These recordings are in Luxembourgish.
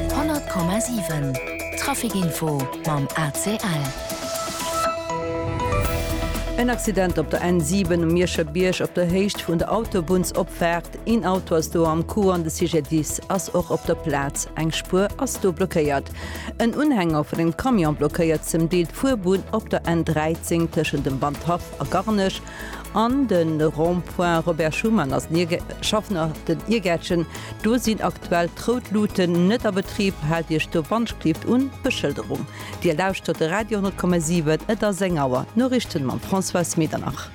100,7 Trafic Info mam ACL. En Accident op der N7 um Mierscher Bierg op der Héicht vun der Autobunnsopfaart. Een Auto ass do am Coup an de Sujet 10 ass och op der Plaz. Eng Spuer ass do blockéiert. En Unhänger vun engem Camion blockéiert zum Deel d'Fuerbunn op der N13 tëschent dem Wandhaff a Garnech. An de Rond-point Robert Schuman ass den Schaffner den Iergäertchen. Do sinn aktuell d'rout Luuten net a Betrib. Haalt Iech do Wandschklift un d'Beschëlderung. Dir lauschtert de Radio 10,7. Et ass eng Auer. D'Noriichten mam Françoise Medernach.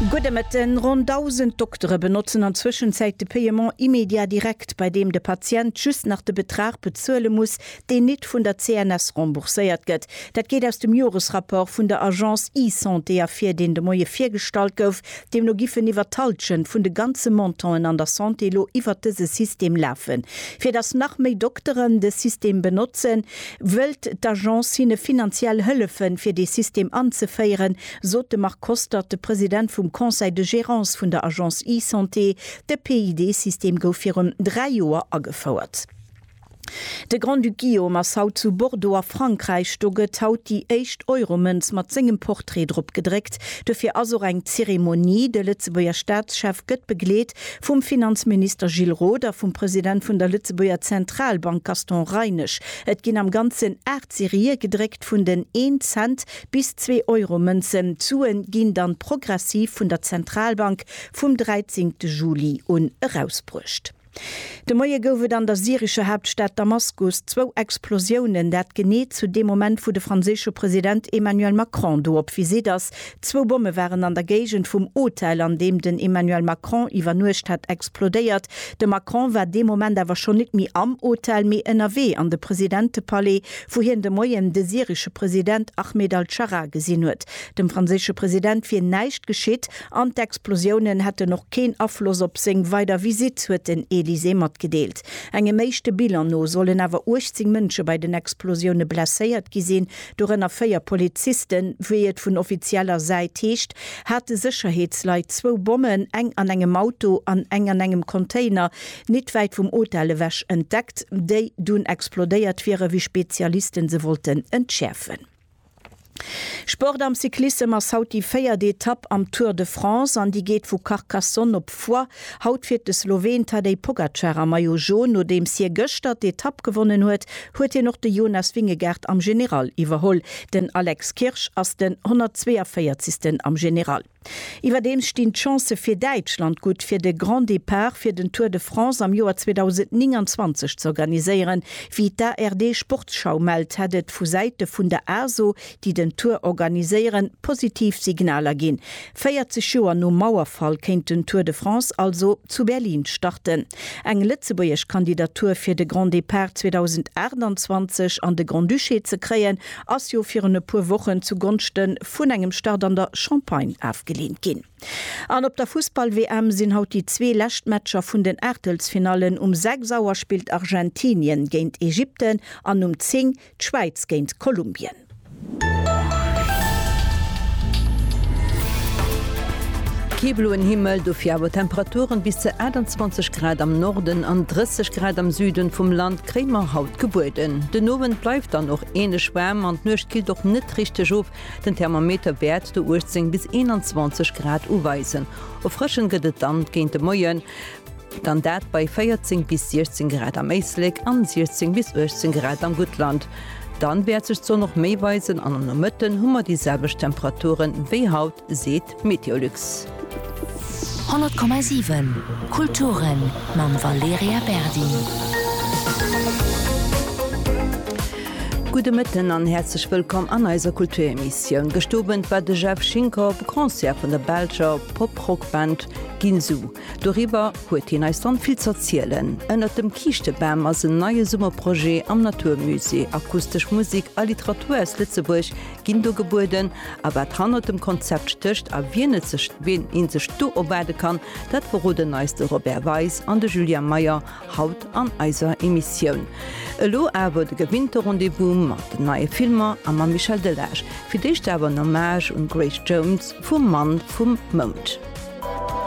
Gudde Mëtten. Ronn 1.000 Doktere benotzen an Zwëschenzäit de Paiement immédiat direct, bei deem de Patient just nach de Betrag bezuele muss, deen nit vun der CNS rembourséiert gëtt. Dat geet aus dem Joresrapport vun der Agence eSanté ervir, deen de Moie virgestallt gouf. Deemno giffen iwwert d'Halschent vun de ganze Montanten an der Santé elo iwwert dëse System lafen. Fir datt nach méi Dokteren de System benotzen, wëllt d'Agence hinne finanziell hëllefen, fir dee System anzeféieren, sot de Marc Kostert, de President vum Conseil de gérance vun der Agence eSanté. De PID-System gouf virun dräi Joer agefouert. De Grand-Duc Guillaume ass haut zu Bordeaux a Frankräich. Do gëtt haut déi éischt Euromënz mat sengem Portrait drop gedréckt. Dofir ass och eng Zeremonie. De Lëtzebuerger Staatschef gëtt begleet vum Finanzminister Gilles Roth a vum President vun der Lëtzebuerger Zentralbank Gaston Reinesch. Et ginn am Ganzen 8 Serië gedréckt vun den Een-Cent bis Zwee-Euro-Mënzen. D'Sue ginn dann progressiv vun der Zentralbank vum 13 Juli un erausbruecht. De Moie gouf et an der syrescher Haaptstad Damaskus zwou Explosiounen, dat genee zu deem Moment, wou de franséische President Emmanuel Macron do op Visitt ass. Zwou Bomme waren an der Géigend vum Hotel, an deem den Emmanuel Macron iwwernuecht hat, explodéiert. De Macron war dee Moment awer schonn net méi am Hotel, mee ënnerwee an de Presidentepalais, wou hien de Moien de syresche President Ahmed al-Scharra gesinn huet. Dem franséische President wier näischt geschitt. An d'Explosiounen hätten och keen Afloss op seng weider Visitt, huet den Elysée matgedeelt. Engem éischte Bilan no sollen awer 18 Mënsche bei den Explosioune blesséiert gi sinn, dorënner véier Polizisten. Wéi et vun offizieller Säit heescht, hate Sécherheetsleit zwou Bommen, eng an engem Auto an eng an engem Container, nit wäit vum Hotel ewech entdeckt, déi dunn explodéiert wieren, wéi Spezialiste se wollten entschäerfen. Sport am Cyclissem ass haut déi véiert Etapp am Tour de France an déi geet vu Carcassonne op Foix. Haut fiert de Sloween Tadej Pogacar am Maillot Jaune. Nodeems hie gëschter d'Etapp gewonnen huet, huet hien och de Jonas Vingegaard am General iwwerholl. Den Alex Kirsch ass den 142. am General. Iwwerdeems stinn d'Chancë fir Däitschland gutt, fir de Grand Départ fir den Tour de France am Joer 2029 z'organiséieren. Wéi d'ARD Sportsschau mellt, hätt et vu Säite vun der ASO, déi den Tour organiséieren, positiv Signaler ginn. 40 Joer nom Mauerfall kéint den Tour de France also zu Berlin starten. Eng lëtzebuergesch Kandidatur fir de Grand Départ 2028 an de Grand-Duché ze kréien, ass jo virun e puer Wochen zu Gonschte vun engem Start an der Champagne afgeleent ginn. An op der Fussball-WM sinn haut déi zwee lescht Matcher vun den Aachtelsfinallen. Um 6 Auer spillt Argentinien géint Ägypten an um 10 d'Schwäiz géint Kolumbien. Kee bloen Himmel, dofir awer Temperaturen bis zu 28 Grad am Norden an 30 Grad am Süden vum Land. Kréie mer haut gebueden. Den Owend bleift dann och änlech waarm an d'Nuecht killt och net richteg of. Den Thermometer wäert do 18 bis 21 Grad uweisen. Erfrëschend gëtt et dann géint de Moien, dann dat bei 14 bis 16 Grad am Éislek an 16 bis 18 Grad am Guttland. Dann wäert sech d'Sonn och méi weisen an am Nomëtten hu mer déi selwecht Temperaturen wéi haut, seet. Meteolux. 100,7 Kulturen mam Valerija Berdi. Gudde Mëtten an häerzlech wëllkomm an eiser Kulturemissioun. Gëscht Owend war de Jeff Schinker op e Concert vun der Belscher Pop-Rock-Band Ginsu. Doriwwer huet hien eis dann vill z'erzielen. Ënnert dem Kiischtebam ass en neie Summerprojet am Naturmusée. Akustesch Musek a Literatur aus Lëtzebuerg ginn do gebueden a wat hannert dem Konzept stécht a wien et sech, wien ee sech do erwaarde kann, dat verroden eis de Robert Weis an de Julien Meyer haut an eiser Emissioun. Elo awer de gewinnte Rendez-vous mat den neie Filmer a mam Michel Delage. Fir d'éischt awer en Hommage un Grace Jones vu Mann vum Mound.